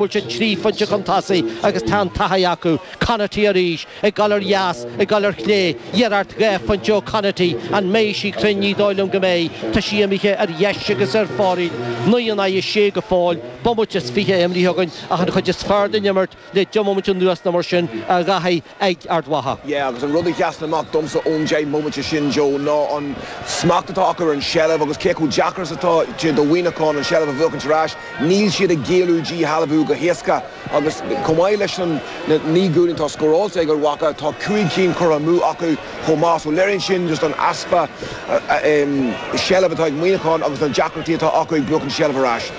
bhfuil siad trí phointe chun tosaigh agus tá an taithí acu. Conaty arís, ag dul ar dheas, ag dul ar chlé, iarracht dhá phointe ó Conaty. An mbeidh sí cruinn? Ní dóigh liom go mbeidh. Tá sí imithe ar dheis agus ar fóraoil. Naoi in aghaidh a sé go fóill. Bomaite is fiche imrithe againn ach an chuid is fearr den imirt le deich mbomaite anuas nó mar sin a David. ag Ard Mhacha. Yeah agus an rud a sheasann amach domsa ón deich mbomaite sin Joe ná an smacht atá acu ar an tseilbh agus cé chomh deacair is atá sé do Mhuineachán an tseilbh a bhuachaint ar ais. Níl siad ag géilleadh díshealbhú go héasca agus chomh maith leis na naoi gcúilín atá scóráilte ag Ard Mhacha tá cúig cinn curtha amú acu. chomh maith. So léiríonn sin just an easpa seilbh atá ag Muineachán agus na deacrachtaí atá acu ag buachaint seilbh ar ais.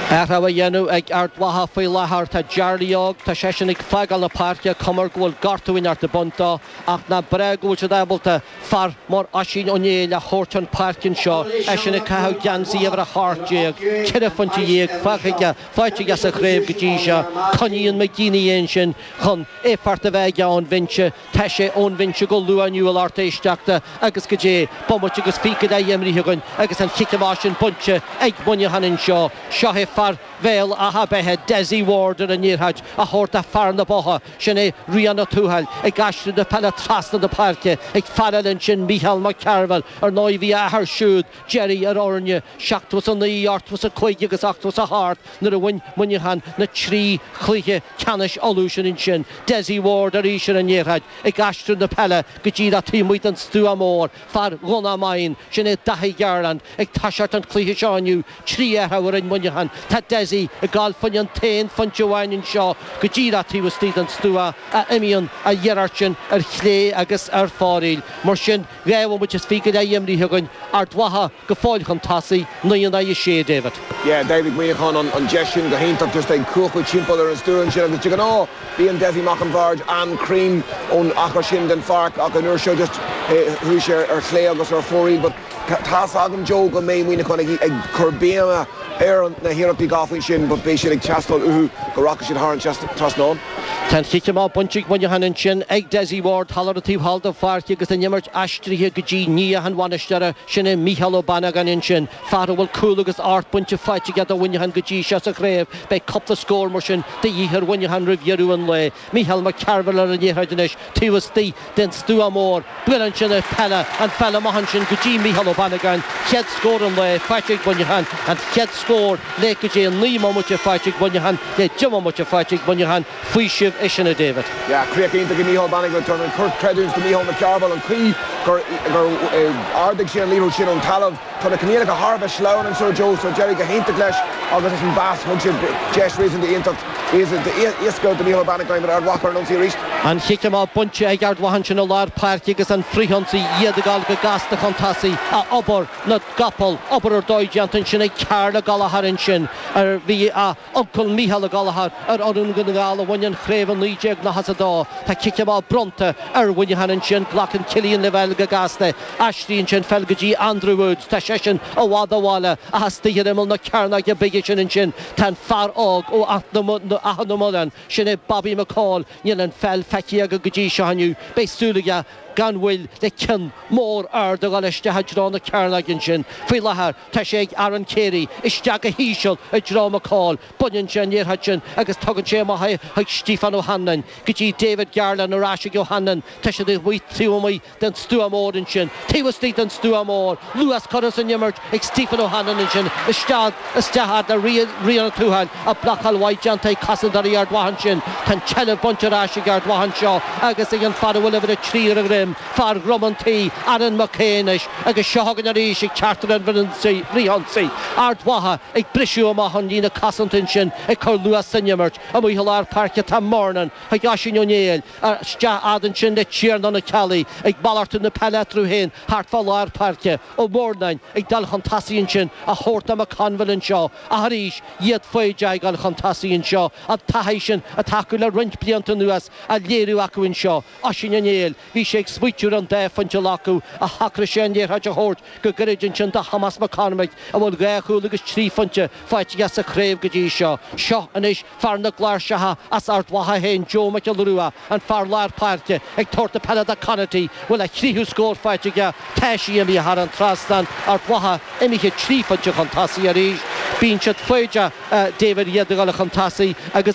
Athrú á dhéanamh ag Ard Mhacha faoi láthair. Tá Jarly Óg, tá seisean ag fágáil na páirce, cuma air go bhfuil gortú inteacht bainte dó, ach nach breá go bhfuil siad ábalta fear mar Oisín Ó Néill a thabhairt chun páirce anseo, eisean ag caitheamh geansaí uimhir 18, ceithre phointe dhéag fágtha aige, faighte aige sa chraobh go dtí seo. Coinníonn McGeeney é ansin chun éifeacht a bheith aige ón bhinse. Tá sé ón bhinse go luath inniu a lucht éisteachta agus goidé, bomaite agus fiche go leith imrithe againn agus an chic amach sin bainte ag Muineachán anseo. Seo é fear Bhéal Átha Beithe, Dessie Ward ar an liathróid, á thabhairt do fhear na Botha, sin é Riain Ó Tuathail, ag aistriú na peile trasna na páirce, ag fear eile ansin Micheál Mac Cearbhaill, ar ndóigh bhí a athair siúd, Gerry ar fhoirne seachtó is a naoi, ochtó is a cúig agus ochtó is a hocht nuair a bhain Muineachán na trí chluiche ceannais Uladh sin ansin. Dessie Ward arís ar an liathróid ag aistriú na peile go dtí ar an taobh amuigh den stua mór, fear Dhomhnach Maighean. Sin é Daithí Garland ag toiseacht an chluiche seo inniu. Trí athrú a rinne Muineachán. Tá Dessie ag gabháil fá choinne an t-aon phointe amháin anseo go dtí ar an taobh istigh den stua ach imíonn an iarracht sin ar chlé agus ar fóraoil. Mar sin. Dhá bhomaite is fiche go leith imrithe againn, Ard Mhacha go fóill chun tosaigh, naoi in aghaidh a sé, a David. Yeah, d'oibrigh Muineachán an deis sin go hiontach just ag cuachadh timpeall ar an stua ansin agus de ghnáth bíonn Dessie Mac an Bhaird an-chruinn ón achar sin den pháirc ach an uair seo just chuaigh sé ar chlé agus ar fóraoil but tá's agam Joe go mbeidh Muineachán ag cur béime ar na hiarrachtaí dhá phointe sin but beidh siad ag teastáil uathu go rachaidh siad thar an trasnán. Tá an chic amach bainte ag Muineachán ansin ag Dessie Ward thall ar an taobh thall den pháirc agus an imirt aistrithe go dtí nia an bhainisteora, sin é Mícheál Ó Banagáin ansin. Fear a bhfuil cúl agus ocht bpointe faighte aige do Mhuineachán go dtí seo sa chraobh, beidh cúpla scór mar sin de dhíth ar Mhuineachán roimh dheireadh an lae. Mícheál Mac Cearbhaill ar an liathróid anois taobh istigh. den stua mór, buail ansin ar pheil an pheil amach ansin go dtí Micheál Ó Banagáin, chéad scór an lae faighte ag Muineachán, an chéad scór le goidé naoi mbomaite faighte ag Muineachán, le deich mbomaite faighte ag Muineachán, faoiseamh é sin a David. Yeah, críoch iontach ag Micheál Ó Banagáin, tabhair an-chuid creidiúint do Micheál Mac Cearbhaill, an chaoi gur ardaigh sé an liathróid sin ón talamh. Tá na coinníollacha thar a bheith sleamhain anseo Joe, so d'éirigh go hiontach leis agus as an bpas thug sé deis réasúnta iontach, réasúnta éasca do Micheál Bannigan. Ard Mhacha ar an ionsaí arís. An chic amach bainte ag Ard Mhacha ansin i lár páirce agus an frithionsaí iad ag gabháil go gasta chun tosaigh ach obair na gcapall, obair ar dóigh déanta ansin ag Karl Gallagher ansin ar bhí a. Uncail Micheál Gallagher ar fhoireann Dhún na nGall a bhain an chraobh i 1992. Tá cic amach bronnta ar Mhuineachán ansin. Glacann Cillian Lavelle go gasta. Aistríonn sé an pheil go dtí Andrew Woods. Tá seisean i bhfad ó bhaile ach istigh ar imeall na cearnóige bige sin ansin tá an fear óg ó Achadh na Muileann, sin é Bobby McCaul. Níl an pheil feicthe aige go dtí seo inniu. Beidh súil aige gan mhoill le ceann mór ard a dhul isteach i dtreo na cearnóige ansin. Faoi láthair. Tá sé ag Aaron Carey isteach go híseal i dtreo McCaul, baineann sé an liathróid sin agus tugann sé amach é chuig Stiofán Ó hAnluain, go dtí David Garland, ar ais chuig Ó hAnluain, tá siad ag rith taobh amuigh den stua mór ansin, taobh istigh den stua mór, luas curtha san imirt ag Stiofán Ó hAnluain ansin, isteach, isteach fhad le Rian Ó Tuathail, ach blocáil mhaith déanta ag cosantóirí Ard Mhacha ansin, tá an tseilbh bainte ar ais ag Ard Mhacha anseo agus ag an fear a bhfuil uimhir a trí ar a dhroim, Fear Dhrom an Tí, Aaron McKay anois agus seo chugainn arís ag teacht ar an bhfrithionsaí. Ard Mhacha ag briseadh amach ón líne cosanta ansin ag cur luas san imirt. Amuigh i lár páirce tá Murnin chuig Oisín Ó Néill. Isteach fhad ansin le Tiarnán Ó Ceallaigh ag malartú na peile eatarthu féin thart fá lár páirce. Ó Murnain ag dul chun tosaigh ansin á thabhairt do McConville anseo ach arís iad foighdeach ag gabháil chun tosaigh anseo. An taithí sin atá acu le roinnt blianta anuas á léiriú acu anseo. Oisín Ó Néill, bhí sé ag smaoitiú ar an dá phointe a ghlacadh ach shocraigh sé an liathróid a thabhairt go gairid ansin do Thomás Mac Cormaic a bhfuil dhá chúl agus trí phointe faighte aige sa chraobh go dtí seo. Seo anois fear na gcláirseacha as Ard Mhacha féin Joe Mac Giolla Rua, an fear lár páirce, ag tabhairt na peile do Conaty bhfuil a thríú scór faighte aige tá sí imithe thar an trasnán, Ard Mhacha imithe trí phointe chun tosaigh arís, bíonn siad foighdeach David iad ag gabháil chun tosaigh agus.